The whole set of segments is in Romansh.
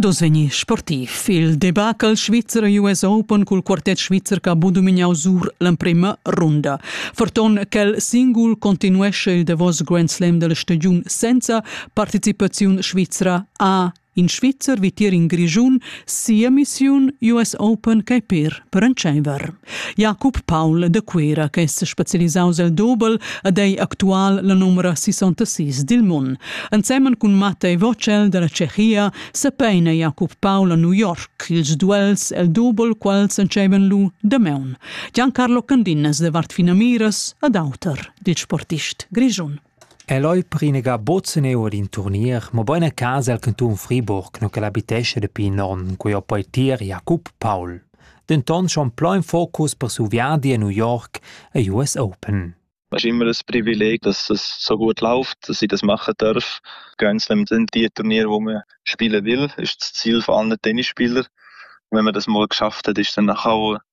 Ad oz vegni sportiv. Il debacle Svizzer US Open cul quartet svizzer che ha budumignau sur l'emprema runda. Ferton quel singul continuesce il davos Grand Slam della stagiun senza participaziun svizra a in Svizzer vitier in Grischun sia missiun US Open che per per entscheiver. Jakob Paul de Cuera che es specialisaus el dobel ed ei actual la numera 66 dil mun. Ensemen cun Matta e Vocel dalla Cehia sepeina Jakob Paul a New York ils duels el dobel quals entscheiven lu damaun. Giancarlo Candinas de Vart Finamiras ed auter, dit sportist grischun. El ei prinegà buc seneu ad in turnier, mobein a casa el cantun Friburg, nu ch'el habitescha dapi in onn, cui ho poi tier Jakob Paul. Denton schon plau in focus per su viadi a New York e US Open. Es ist immer ein Privileg, dass es so gut läuft, dass ich das machen darf. Grand Slam sind die Turniere, wo man spielen will, ist das Ziel von allen Tennisspielern. Wenn man das mal geschafft hat, ist dann nachher auch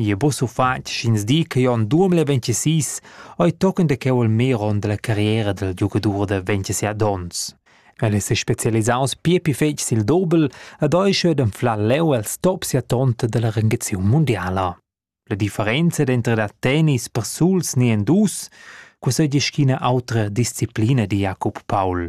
Jeu bus ufatg sch'ins di che jeu en duemila ventisís ei tochen da cheu il mer onn dalla carriera dal giugadur da ventisei donns. El è sespecialisaus pia pli fetg sil dobel ed ei cheu d'anflar leu els top sia tonta dalla rengaziun mundiala. La differenza denter da tennis persuls ni en dus, quei seigi sch'ina autra disciplina di Jacob Paul.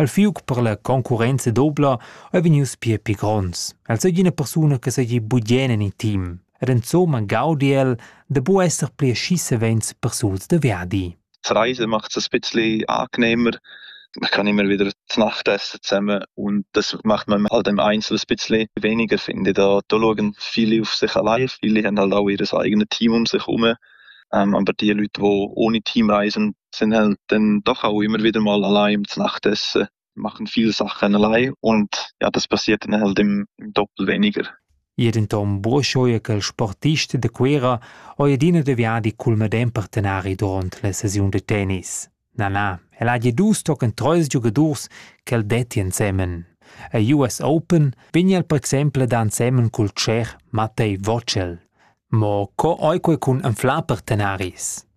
El fiug per la concurrenza dobla ei vegnius pia pli gronds. El seigi ina persuna che seigi bugen en il team ed insomma gaudi el da bu esser pli aschi savens persuls da viadi. Die Reise macht es ein bisschen angenehmer. Man kann immer wieder zu Nacht essen zusammen und das macht man halt im Einzelnen ein bisschen weniger, finde ich. Da, da schauen viele auf sich allein, viele haben halt auch ihr eigenes Team um sich herum. Ähm, aber die Leute, die ohne Team reisen, Sen halt dann doch auch immer wieder mal allein ums Nachtessen, machen viel Sachen allein und ja, das passiert dann halt im doppelt weniger. Jeden tom buoschoi che il sportist da Cuera ho adina deviadi cul medem partenari durant la sesiun da tennis. Na na, el ha gi dus tochen treis giugadurs che el detti ensemen. A US Open vegna el per exempel ad ensemen cul tschech Mattei Vocel. Mo co oique cun anflar partenaris?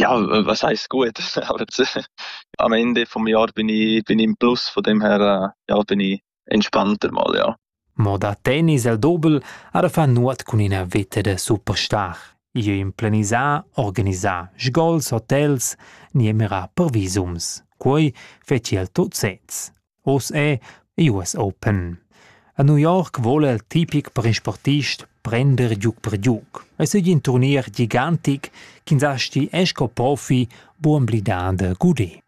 Ja, was heisst gut? a Mende vom Jahr bin ich, bin ich im Plus, von dem her äh, ja, bin ich entspannter mal, ja. Mo da tennis el dobel ara fa nuot cun ina veta da superstar. Io implenisà, organisà sgols, hotels, niemera per visums. Quei feci el tot sez. Oz è ei uss open. A New York vole il tipic per in sportist prender giug per giug. Ei seigi in turnier gigantic ch'ins asti esco profi buon blidà de gudé.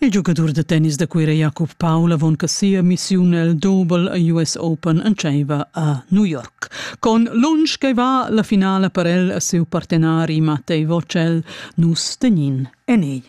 Il giugadur da tennis da Cuira Jakob Paul avon che sia missiun el Double US Open entscheiva a New York. Con lunsch che va la finala per el e siu partenari Mattei Vocel, nus tegnin en ei.